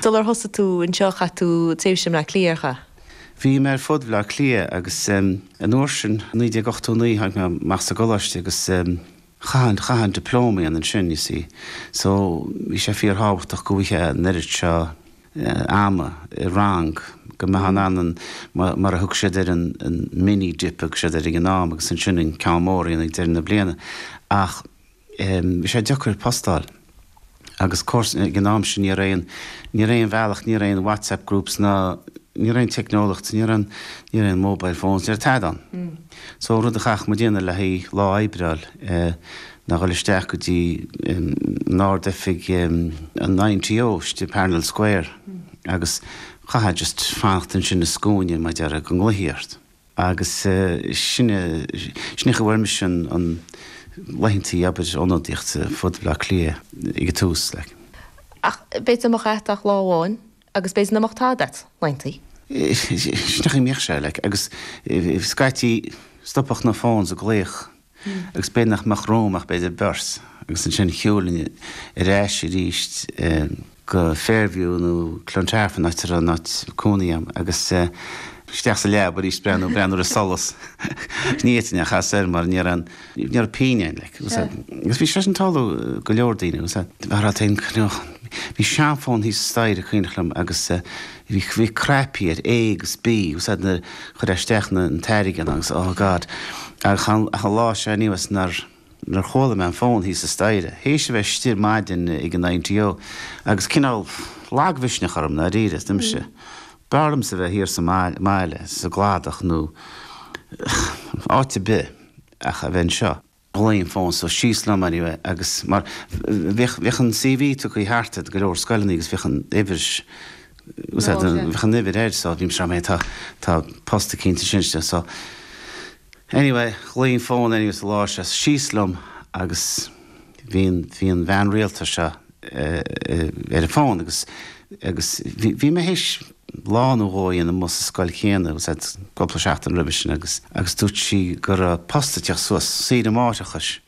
Sular thosaigh tú anseo, chaith tú tréimhse i mBleá Cliath, ar chaith? Bhí mé ar fud Bhleá Cliath agus an uair sin, 1989, tháinig mé amach as an gcoláiste agus chaithfeá, chaithfeá an dioplóma a dhéanamh ansin, you see. So, bhí sé fíorthábhachtach go bhfaighfeá an oiread seo ama i rang, go mbeifeá in ann an, mar a thug siad air, an mini-dip a thug siad air ag an am agus ansin an ceann mór a dhéanamh ag deireadh na bliana ach, Bhí sé deacair post a fháil agus of course ag an am sin, ní raibh aon, ní raibh aon bhealach, ní raibh aon WhatsApp groups ná, ní raibh aon teicneolaíocht, ní raibh, ní raibh aon mobile phones, ní raibh tada ann. So rud a chaithfeadh muid a dhéanamh le haghaidh lá oibre a fháil ná dhul isteach go dtí an Ard Oifig an INTO istigh i Parnell Square agus chaithfeá just fanacht ansin i scuaine mar a déarfá go nglaofaí ort. Agus sin é an chaoi a bhfuair mise laethantaí obair ionadaíochta ar fud Bhleá Cliath ag an tús. Like b'fhéidir nach mbeadh agat ach lá amháin agus b'fhéidir nach mbeadh tada agat, laethantaí. Sin é an chaoi a mbíodh sé, like. Agus scaití, stopadh na phones ag glaoch agus b'fhéidir nach mbeadh romham ach b'fhéidir beirt, agus ansin shiúlainn ar ais arís go Fairview nó Clontarf, an áit a raibh an áit cónaí agam agus isteach sa leaba arís breathnú, breathnú ar an solas, ní fhéadfainn a chas air mar ní raibh pingin ann, agus bhí sé sin ag tarlú do go leor daoine, agus bhí seanfón thíos staighre is cuimhneach liom agus. Bhí cnaipí air, A agus B, úsáid na, chuir isteach na, an t-airgead ann agus, oh God. Ach an, ach an lá seo anyways nár, nár chuala mé an fón thíos sa staighre, théis a bheith istigh ar maidin ag an INTO agus cineál lagmhisneach orm, ndáiríre, is dúirt mise, b'fhearr liomsa a bheith thiar sa mbaile, sa gCladach nó áit ar bith ach a bheith anseo. Ghlaoigh an fón so síos liom anyway agus mar bheadh, bheadh an CV tugtha thart ag go leor scoileanna agus bheadh an uimhir, ús ar, bheadh an uimhir air so bhí mise ag rá, tá, tá post eicínt ansin istigh so anyway ghlaoigh an fón anyways an lá seo síos liom agus bhí an, bhí an bhean rialta seo ar an bhfón agus, agus bhí, bhí mé théis, lá nó dhó a dhéanamh amuigh sa scoil chéanna b'fhéidir cúpla seachtain roimhe sin agus agus dúirt sí go raibh post ag teacht suas saoire máithreachais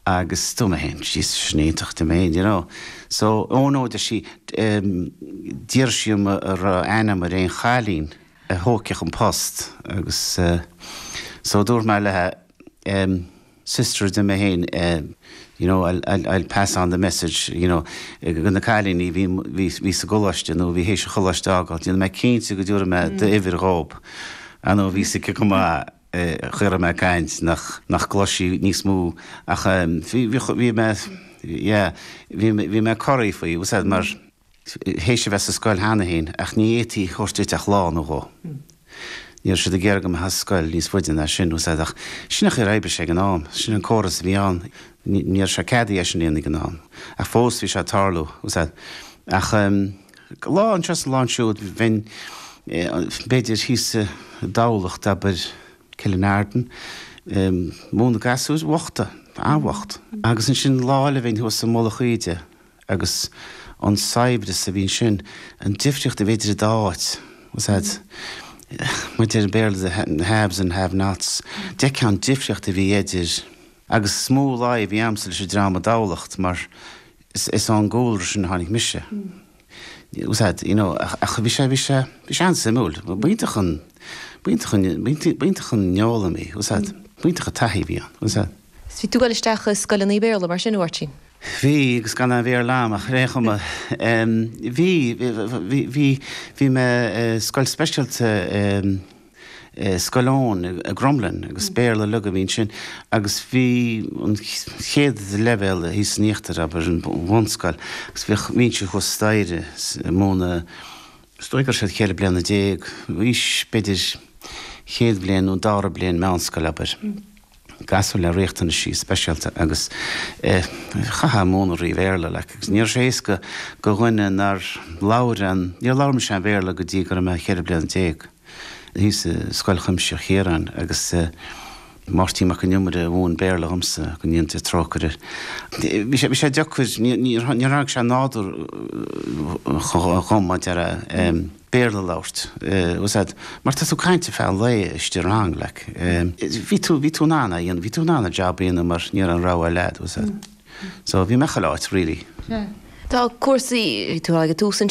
agus dúirt mé fhéin Jesus sin iontach I mean you know so oh no deir sí ehm d'fhiafraigh sí dhíom an raibh aithne agam ar aon chailín a thógfadh an post agus eh so dúirt mé léithe ehm sister a dúirt mé féin you know I'll I'll pass on the message you know go na cailíní bhí bhí bhí sa gcoláiste nó bhí th'éis an choláiste a fhágáil déanfaidh mé cinnte go dtabharfaidh mé d'uimhir dhóib ah no bhí a fhios aici go maith an chaoi a raibh mé ag caint nach nach gcloisfeadh sí níos mó ach bhí bhí bhí mé yeah bhí mé corraithe faoi tá a fhios agat mar théis a bheith sa scoil cheana féin, ach ní fhéadfaí a thabhairt duit ach lá nó dhó. Ní raibh siad ag iarraidh go mbeifeá sa scoil níos faide ná sin, bhfuil a fhios agat, ach sin an chaoi ar oibrigh sé ag an am. Sin an córas a bhí ann. Ní raibh sé ceadaithe é sin a dhéanamh ag an am, ach fós bhí sé ag tarlú, bhfuil a fhios agat. Ach lá anseo is lá ansiúd, bhínn, b'fhéidir, thíos i dTamhlacht, abair, Killinarden, ag múineadh gasúir bhochta, an-bhocht, agus ansin lá eile bhínn thuas i Mullach Íde, Agus an saibhreas a bhí ansin, an difríocht a bhí idir an dá áit, bhfuil a fhios agat, mar a deir an Béarla the haves and have nots, d'fheicfeá an difríocht a bhí idir. Agus is mó luí a bhí agamsa leis an dream i dTamhlacht mar is ón gcúlra sin a tháinig mise. Bhfuil a fhios agat, you know, ach bhí sé, bhí sé, bhí sé an-suimiúil, b'iontach an, b'iontach an, b'iontach an fhoghlaim í, bhfuil a fhios agat, b'iontach an taithí a bhí ann, bhfuil a fhios agat. Bhí tú ag dul isteach i scoileanna Béarla, mar sin, a Mháirtín? Bhí, agus gan aon Bhéarla agam ach ar aon chuma. Bhí, bhí, bhí mé i scoil speisialta i Scoil Eoin i gCromghlinn agus Béarla uilig a bhí ansin agus bhí an chéad leibhéal thíos san íochtar, abair, an bhunscoil agus bhí mise thuas staighre ag múineadh, is dóigh go raibh siad ceithre bliana déag d'aois, b'fhéidir, chéad bhliain nó dara bliain meánscoile, abair. gasúir le riachtanaisí speisialta agus chaithfeá múineadh thrí Bhéarla like agus ní raibh sé éasca go dhuine nár labhair aon, níor labhair mise aon Bhéarla go dtí go raibh mé cheithre bliana déag, thíos i Scoil Chuimsitheach Chiaráin agus Máirtín Mac an Iomaire a mhúin Béarla dhomsa go ndéana Dia trócaire air. Bhí sé, bhí sé deacair, níor, níor tháinig sé nádúrtha dhom, mar a déarfá. Béarla a labhairt. Bhfuil a fhios agat. Mar tá tú ag caint ar feadh an lae istigh i rang, like. Bhí tú, bhí tú in ann a dhéanamh, bhí tú in ann an job a dhéanamh mar ní raibh aon rogha eile agat, bhfuil a fhios agat. So bhí mé chuile áit really. Tá cúrsaí, bhí tú ag an tús ansin,